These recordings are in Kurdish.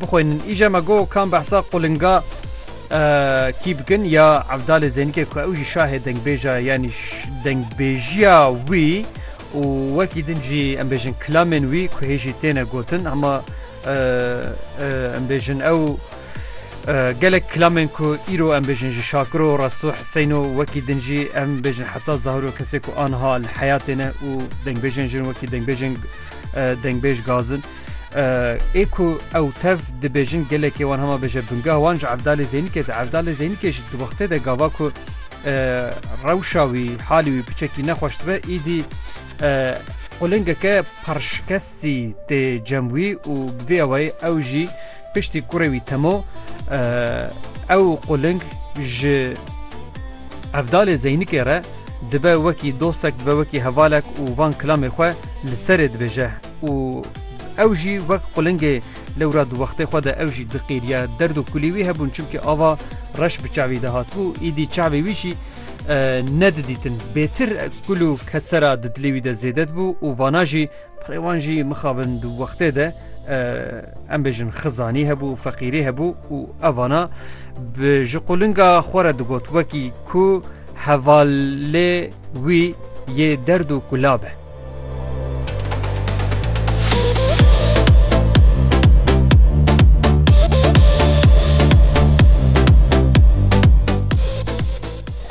bixwînin. Îja me got kan behsa qulinga kî bikin ya evdalê zênikê ku ew jî şahê dengbêja yanî dengbêjiya wî û wekî din jî em bêjin kilamên wî ku hê jî têne gotin hema em bêjin ew gelek kilamên ku îro em bêjin ji şakiro resto heseyno wekî din jî em bêjin heta zahiro kesê ku anha li heyatê ne û dengbêjên jin wekî dengbêjên dengbêj gazin. ê ku ew tev dibêjin gelekê wan hema bêje bingah wan ji evdalê zênikê de evdalê zênikê ji di wextê de gava ku rewşa wî halî wî piçekî nexweş dibe îdî qulingeke parşikestî tê cem wî û bi vê awayê ew jî Piştî kurê wî Temo ew quling ji Evdalê Zeynikê re dibe wekî dostek dibe wekî hevalek û van kilamê xwe li serê dibêje û ew jî wek qulingê lewra di wextê xwe de ew jî diqîriye derd û kulî wî hebûn çimkî ava reş bi çavî de hatbû îdî çavê wî jî nedidîtin bêtir kul û kesera di dilê wî de zêde dibû û vana jî Pirê wan jî mixabin di wextê de em bêjin xizanî hebû û feqîrî hebû û evana bi ji qulinga xwe re digot wekî ku hevalê wî yê derd û kula be.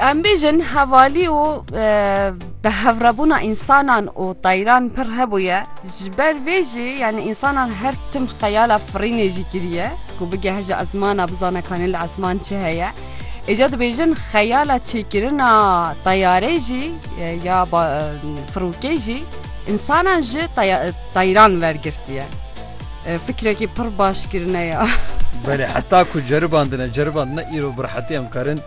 Em bêjin hevalî û Bi hevrebûna însanan û tayran pir hebûye, ji ber vê jî yanî însanan her tim xeyala firînê jî kiriye ku bigeh ji esmana bizane kanî li esman çi heye. Îca dibêjin xeyala çêkirina tayarê jî ya firokê jî însanan ji tayran wergirtiye. Fikrekî pir baş kirine ya. Belê heta ku ceribandine ceribandine îro bi rehetî em karin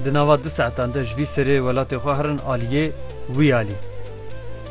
Di nava du saetan de ji vî serê welatê xwe herin aliyê wî alî.